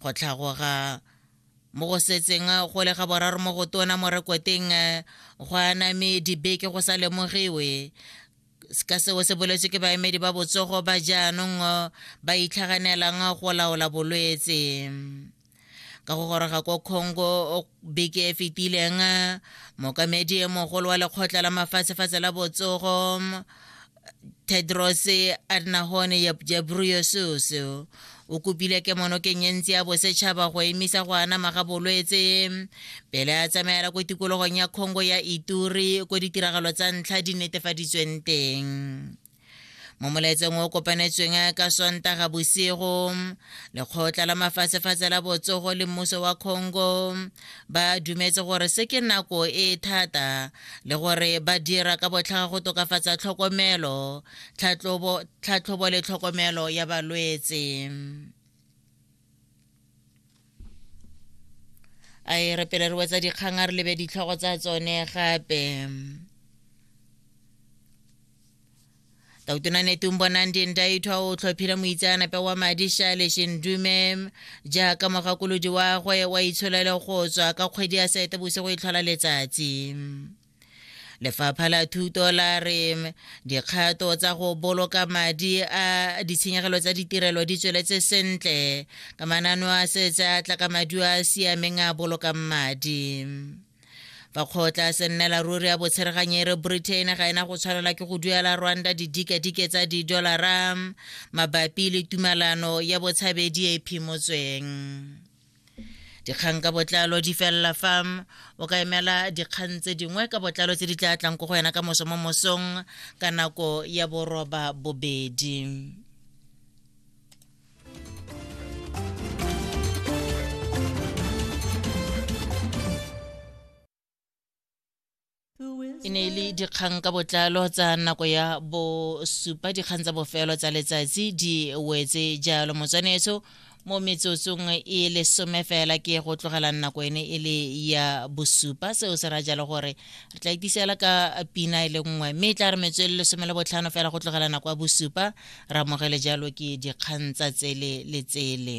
go tlhagoga mo go setseng go le ga boraro mo go tona mo rekoteng go aname dibeke go sa lemogiwe ka seo se boletswe ke baemedi ba botsogo ba jaanong ba itlhaganelang go laola bolwetse ka go goroga ko congo beke e fetileng mokamedi mogolo wa lekgotla la mafatshefatshe la botsogo tedros adnahon jabruyesus o kopile kemonokeng e ntsi ya bosetšhaba go emisa go anama ga bolwetse pele a tsamaela ko tikologong ya congo ya ituri ko ditiragalo tsa ntlha di netefaditsweng teng mo molaetsong o kopanetsweng ka sontaga bosigo lekgotla la mafatshefatshe la botsogo le mmuso wa congo ba dumetse gore se ke nako e thata le gore ba dira ka botlhaga go tokafatsa tlhokomelo tlhatlhobo le tlhokomelo ya balwetse a e re pele re wetsa dikgang a re lebe ditlhogo tsa tsone gape tautunane tumbo nandi ndaitwa o tlhophile moitseanape wa madi shale shindume jaaka mogakolodi wa gwe wa itsholele go tswa ka kgwedi ya sete bosigo e tlhola letsatsi lefapha la thuto la re dikgato tsa go boloka madi a ditshenyegelo tsa ditirelo di tsweletse sentle ka manano a setse a tla ka maduo a a siameng a bolokang madi fa kgotla se nnela ruri ya botshereganyere britain ga ena go tshwanela ke go duela rwanda didikadike tsa didolara mabapi le tumalano ya botshabedi e phimotsweng dikgang ka botlalo di felela fa o ka emela dikgang tse dingwe ka botlalo tse di tla tlang ko go yena ka moso mo mosong ka nako ya boroba bobedi e ne e le dikgang ka botlalo tsa nako ya bosupa dikgang tsa bofelo tsa letsatsi di wetse jalo motswanetso mo metsotsong e lesome fela ke go tlogela nako ene e le ya bosupa seo se ra jalo gore re tla itisela ka pina e le nngwe mme e tla re metswe le lesome le botlhano fela go tlogela nako ya bosupa re amogele jalo ke dikgang tsa tsele le tsele